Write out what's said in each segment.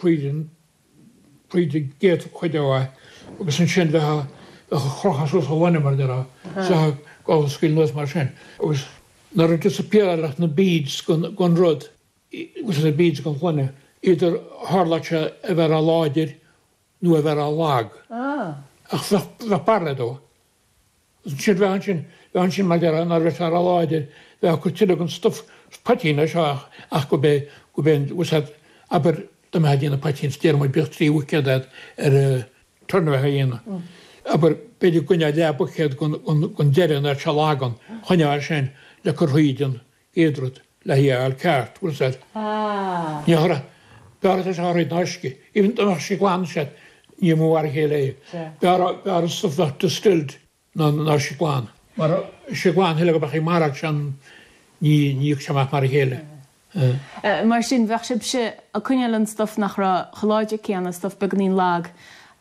hÉireann, cuid de gcéad chuid de bhaith, agus ansin bheith á chrochadh suas i ngloine, mar a déarfá, go scaoil anuas mar sin. Agus nuair a disappearáileadh na beads den rud, na beads den ghloine, b'fhéidir tharlódh sé a bheith ró-láidir nó a bheith ró-lag, ach bheadh barraíocht dó. Ansin, bheadh ansin, bheadh ansin mar a déarfá dá mbeadh sé róláidir, bheifeá ag cur tuilleadh den stuif, poitín é seo ach, ach go bé, go bé an, was that, abair, dá mbeifeá ag déanamh poitín is déarfaidh muid go mbeadh trí bhuicéad agat ar a, turn a bheifeá a dhéanamh, abair, b'fhéidir go gcoinneofá leathbhuicéad gon, gon, gon deireadh ná ar seal a fhágann, choinneofá sin le cur thríd an, Chéad rud, le hí a fháil ceart, bhfuil a fhios agat? Mar b'fhearr é ná uisce, even dá mbeadh sé glan, sea, ní mar a chéile é. B'fhearr an stuif a bheadh distilled ná an t-uisce glan. Mar uisce glan thuilleadh a bheadh ag marach sin ní bhíodh sé amach mar a chéile. Mar sin, bheadh sibhse ag coinneáil an stuif nach raibh chomh láidir céanna, stuif beagáinín lag,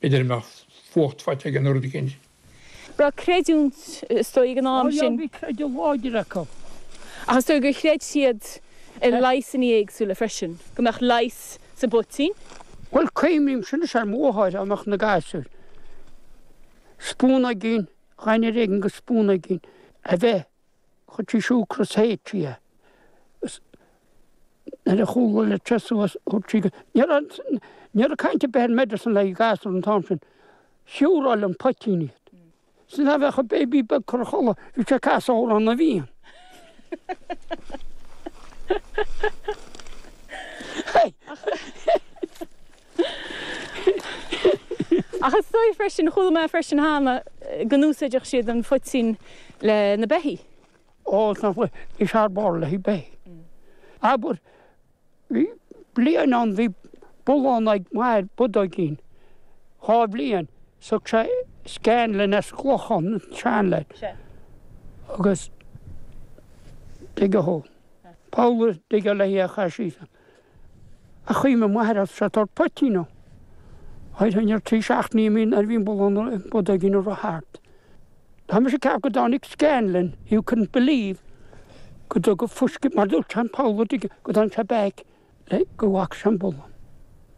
B'fhéidir go mbeadh fuacht faighte aige nó rud éigin. Bheadh creidiúint, is dóigh, ag an am sin. Ó já, bhí creideamh láidir acu. Ach is dóigh gur chreid siad i leigheasanna éagsúla freisin, go mbeadh leigheas sa bpoitín. Bhuel, cuimhnímse anois ar mo mháthair i measc na ngasúr. Spúnóigín, ghnáthnós éigin go spúnóigín a bheith Chuir sí siúcra is é a théamh agus nuair a chuaigh sé le teas suas, dúirt sí go Ní raibh caint ar bith ar medicine le gasúir an t-am sin, siúráilte, an poitín é. Sin a bheadh an béibí beag curtha a chodladh, bhí sé ag casadh Amhrán na bhFiann. Hey! Ach is dóigh freisin, chuala mé freisin cheana, go n-úsáideadh siad an poitín le na beithígh. Ó, is thar barr le beithígh. Abair, bhí bliain ann, bhí bullán ag m'athair, bodóigín, dhá bhliain 's thug sé Scanlan as Clochán, an tréidlia. Sea. Agus tuige thú? Paula, tuige léi a chaith sí san? Ach chuaigh m'athair ag tabhairt poitín dó. Chuir an fear trí seachtainí nuair a bhí an bullán bodóigín ag rith thart. Tá mise ag ceapadh go dtáinig Scanlon, you couldn't believe go dtugadh fuisce mar dúirt Sean Paul, an dtuigeann, go dtáinig sé back le go bhfaca sé an bullán.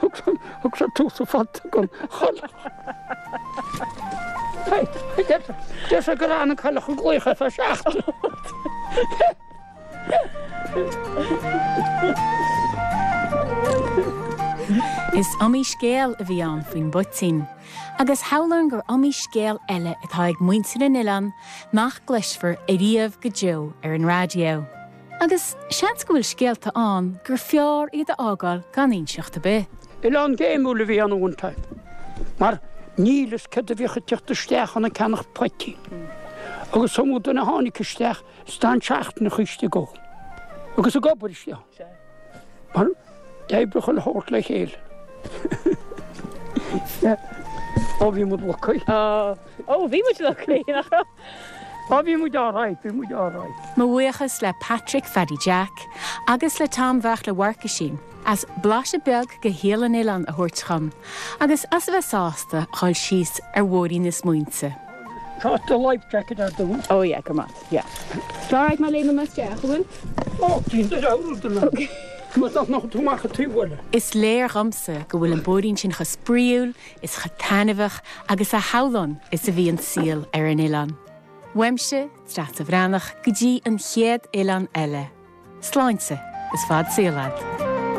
Thug sé tús le fadhb don chailleach. Deir sé gur fhan an chailleach go glaoch fé seachtain. Is iomaí scéal a bhí ann faoin bpoitín, agus samhlaím gur iomaí scéal eile atá ag muintir an oileáin nach gcloisfear ariamh go deo ar an raidió. Agus seans go bhfuil scéalta ann gur fearr iad a fhágáil gan inseacht ar bith. Oileán géimiúil a bhí ann one time, mar níl fhios céard a bhíodh ag teacht isteach ann ag ceannacht poitín. Agus 's iomaí duine a tháinig isteach is d'fhan seachtainí istigh ann. Agus ag obair istigh ann. Mar d'oibrigh chuile shórt le chéile. Ó bhí muid lucky. Ó bhí muid lucky nach raibh? Ó, bhí muid alright, bhí muid alright. Mo bhuíochas le Patrick Phaddy Jack agus le Tom Bheartla Mharcuisín as blaiseadh beag de shaol an oileáin a thabhairt dhom agus as a bheith sásta dhul síos ar bhóithrín na smaointe. Tá an life jacket ar do. Ó yeah, grma, yeah. Tá alright má léimeann mé isteach, an bhfuil? Ó, bíonn do leabhar ar do na. Má tá nach tú amach a taobh bhuile. Is léir dhomsa go bhfuil an bóithrín sin chomh spraíúil, is chomh taitneamhach agus a shamhlaím is a bhí an saol ar an oileán. Uaimse Treasa Bhreathnach go dtí an chéad oileán eile. Sláinte is fad saoil ad.